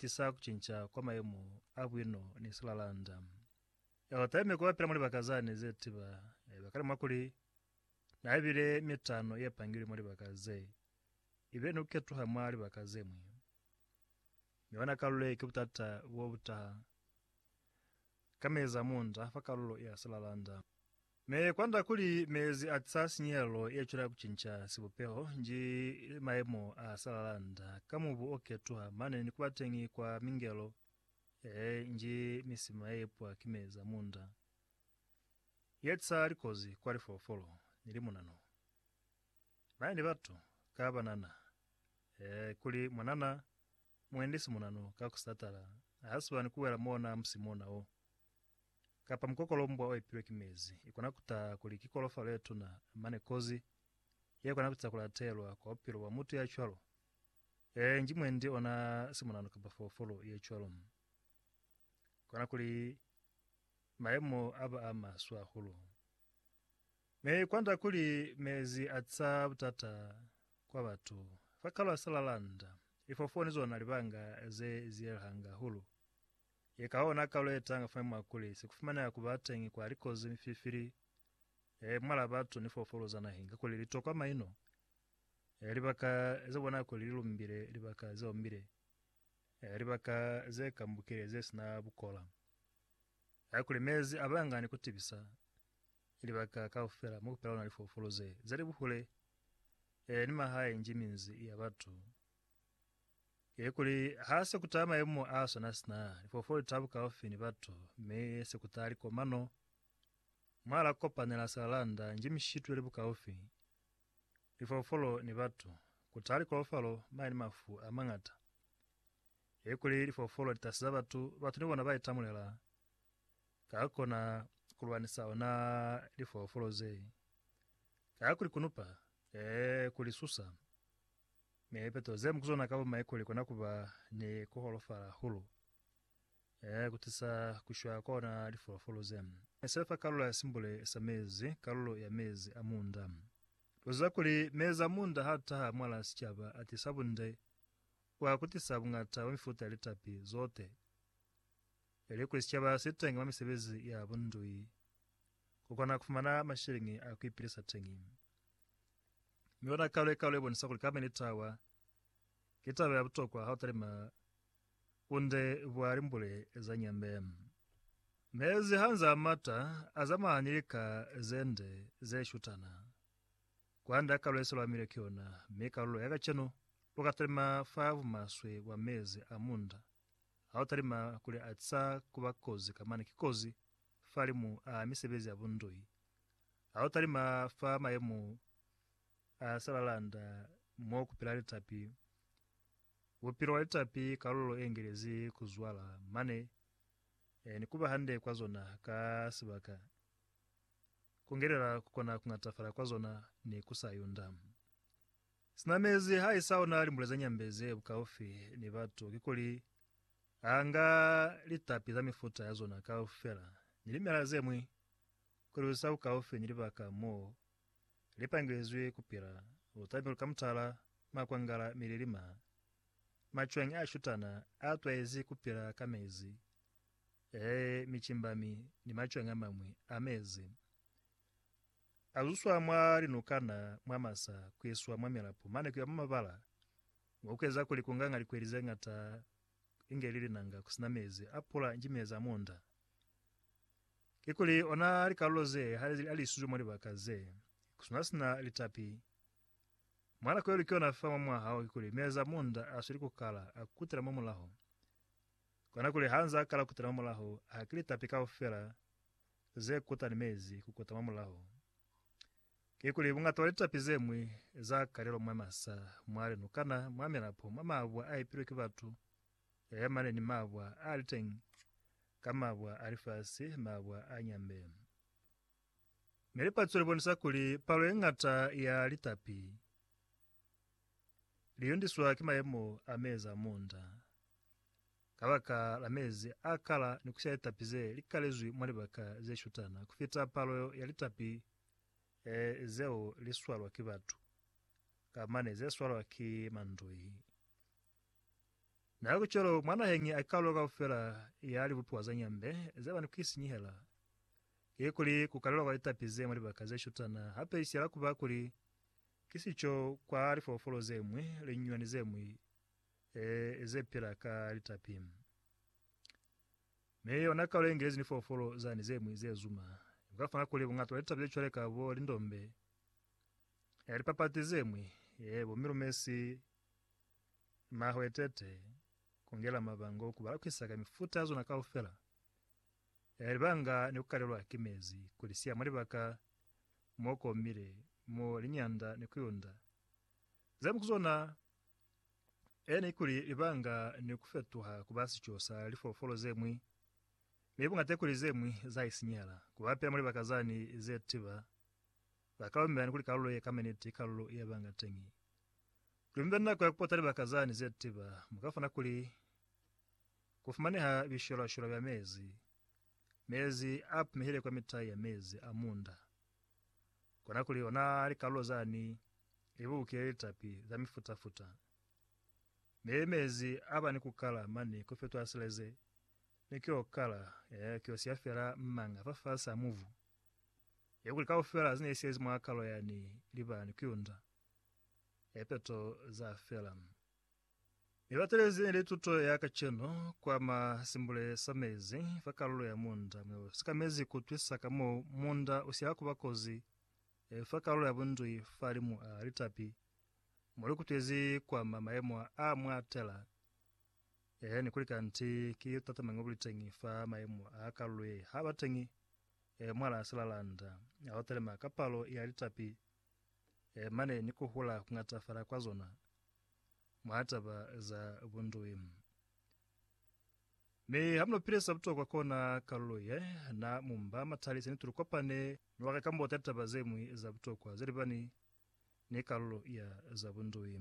tisa kucinca kwa mayemo a buino ni silalanda. Yeo taime ku bapila mwa libaka zane ze tiba, yaba kale mwakuli na bile mitano ye pangilwe mwa libaka ze ibile ni ku ketuha mwa libaka ze ñwi. Mi hona kalulo ye ki butata bo butaha ka meza munda fa kalulo ya silalanda. Me kwanda kuli mezi a tisa sinyehelo ye cwela ku cinca sibupeho nji li mayemo a sa lalanda ka mubu o ketuha mane ni kuba teñi kwa mingelo ee nji misima ye ipwa ki mezi a munda ye tisa likozi kwa lifolofolo ni limunanu mane ni batu ka banana ee kuli mwanana muendi simunanu ka ku satala ha siba ni ku wela mona musi mona wo. Kapa mukokolombwa o epilwe ki mezi ikona kutaha kuli ki kolofalo yetuna, mane kozi yekona kutisa kulatelwa kwa bupilo bwa mutu yacwalo. Ee, nji mwendi ona simonano kapa foofolo yecwalo. Kona kuli mayemo aba a maswe hahulu. Mi kwanda kuli mezi atisa butata kwa batu. Fa kalwa sa lalanda, ifoofolo ni zona libanga ze zielahanga hahulu. Ye ka ona kalo ye tanga fa mwa kuli si ku fumaneha ku ba teñi kwa likozi, mififili, e mwala batu ni foofolo za naheng, kakuli li tokwa maino, e libaka ze bona kuli li lumbile, libaka ze ombile, e libaka ze kambukile ze sina bukola, e kuli mezi a banga ni ku tibisa, e libaka kaufela mo ku pela luna lifoofolo ze, ze li buhule, e ni mahae njiminzi ya batu. Ye kuli ha se kuta mayemo a sona sina lifoofolo litabu kaufi ni batu, mi se kuta likomano mwa la kopanela silalanda nji mishitu yeli bukaufi, lifoofolo ni batu, kuta likolofalo mane ni mafu a mañata. Ye kuli lifoofolo litasi za batu, batu ni bona ba itamulela ka kona kulwanisa ona lifoofolo ze, ka kulikunupaa, ee, kulisusa. Mi lipeto ze mu ku zona kaba maiku li kona kuba ni ku holofala hahulu, ee, ku tisa ku shwa kwa ona lifolofolo ze ne se fa kalulo ya simbule sa mezi, kalulo ya mezi a munda. Lu ziba kuli mezi a munda ha taha mwala sicaba a tisa bunde, wa ku tisa buñata bwa mifuta ya litapi zote. Ili kuli sicaba si teñi mwa misebezi ya bundui, ku kona ku fumana mashiliñi a ku ipilisa teñi. Mi ona kalo ye kalo ye bonisa kuli kama ni tawa ki taba ya butokwa ha u talima kunde bwa limbule za nyembe. Mezi ha nzaa mata, a zamana ni lika ze nde ze shutana. Kwande ha kalo ye se lwamile ki yona, mi kalulo ya kacenu u ka talima fa bumaswe bwa mezi a munda. Ha u talima kuli a za kuba kozi kamana ki kozi fa limu a misebezi ya bundui Ha u talima fa mayemo a salalanda mo ku pila litapi, bupilo bwa litapi kalulo e ngelezi ku zwala mane ni ku ba hande kwa zona ka sibaka, ku ngelela ku kona ku ñatafala kwa zona ni ku sa yunda. Sina mezi ha i sa ona limbule ze nyambe ze bukaufi ni batu, kikuli a nga litapi za mifuta ya zona kaufela ni limela ze ñwi Kuli sa ku kaufi ni libaka mo li pangilizwi ku pila, lu tamilwe ka mutala, makwangala, milili, ma macwañi a shutana a twaizi ku pila ka mezi, ee, micimbami ni macwañi a mañwi a mezi, a zuswa mwa linukana, mwa masa, ku iswa mwa milapo mane ku ya mwa mabala, mo ku eza kuli ku nga nga likweli ze ñata inge li linanga ku si na mezi a pula ni mezi a munda. Kikuli ona likalulo ze hande ze alisizwe mwa libaka ze kusina sina litapi. Mwa nako yelu kiona fa mwa mwaha o kikuli meza munda asweli kukala akutela mwa mulaho. Kona kuli hanze akala kutela mwa mulaho ha ki litapi kaufela ze kuta ni mezi kukuta mwa mulaho. Kikuli bungata bwa litapi zemwi za kalelwa mwa masa, mwa linukana, mwa milapo, mwa mabwa aipilwe ki batu, Yaya mane ni mabwa a li teñi, ka mabwa a lifasi, mabwa a nyambe. Mi lipatso li bonisa kuli palo ye ñata ya litapi li yundiswa ki mayemo a mezi a munda. Ka baka la mezi a kala ni ku siya litapi ze li kalezwi mwa libaka ze shutana ku fita palo ya litapi zeo li swalwa ki batu, ka mane ze swalwa ki mandoi. Na ku cwalo, mwa naheñi a kalo kaufela ya libupiwa za nyambe ze ba ni ku isinyihela, ki kuli, ku kalelwa kwa litapi ze mwa libaka ze shutana, hape i siyela ku ba kuli ki sico kwa lifolofolo ze ñwi li nyunyani ze ñwi ze pila ka litapi. Mi yona kalo ye ngezi ni folofolo zani ze ñwi ze zuma, ku ka fana kuli buñata bwa litapi ze cwale ka bo lindombe, lipapati ze ñwi, bo milumesi, Mahwetete kungela mabango ku balakisa ka mifuta ya zona kaufela ya libanga ni kukalelwa ki mezi ku lisiya mwa libaka mo komile mo linyanda ni kuyunda zemu ku zona e ne ikuli libanga ni kufetuha kuba sico sa lifoofolo zemwi mi bungata ikuli zemwi za isinyela ku bapila mwa libaka zani ze tiba bakaumela ni kuli kalulo ye kameniti ikalulo ye banga teñi Kuli mube ni nako ya kupota libaka zani zetiba, mukafuna kuli kufumaneha bishwelwa-shwelwa bya mezi, mezi a pumehile kwa mitai ya mezi a munda, kona kuli ona likalulo zani libukile litapi za mifuta-futa, mi mezi aba ni kukala mani kufetwa sileze, mi kio kala, ee, kio siya fela mmanga fafasi a mubu, ye kuli kaufela zine sezi mwa kalo yani liba ni kuyunda. Lipeto za fela. Mi batelezi ni lituto ya kacenu kwa ma simbule sa mezi fa kalulo ya munda mo sikamezi ku twisa ka mo munda usila kuba kozi e fa kalulo ya bundwi fa limu a litapi mo likutwezi kwa ma maemo a mwa tela e ni kuli kanti ki tatamañi obuliteñi fa maemo a kalulo ye ha bateñi e mwala silalanda a otelema ka palo ya litapi mane ni kuhula kungatafala kwa zona mwa taba za bundui. Mi hamunopile sa butokwa kona kalulo ye na mumba matali sene tulukopane ni waka kambo tali taba zemwi za butokwa zelibani ni kalulo ya za bundui.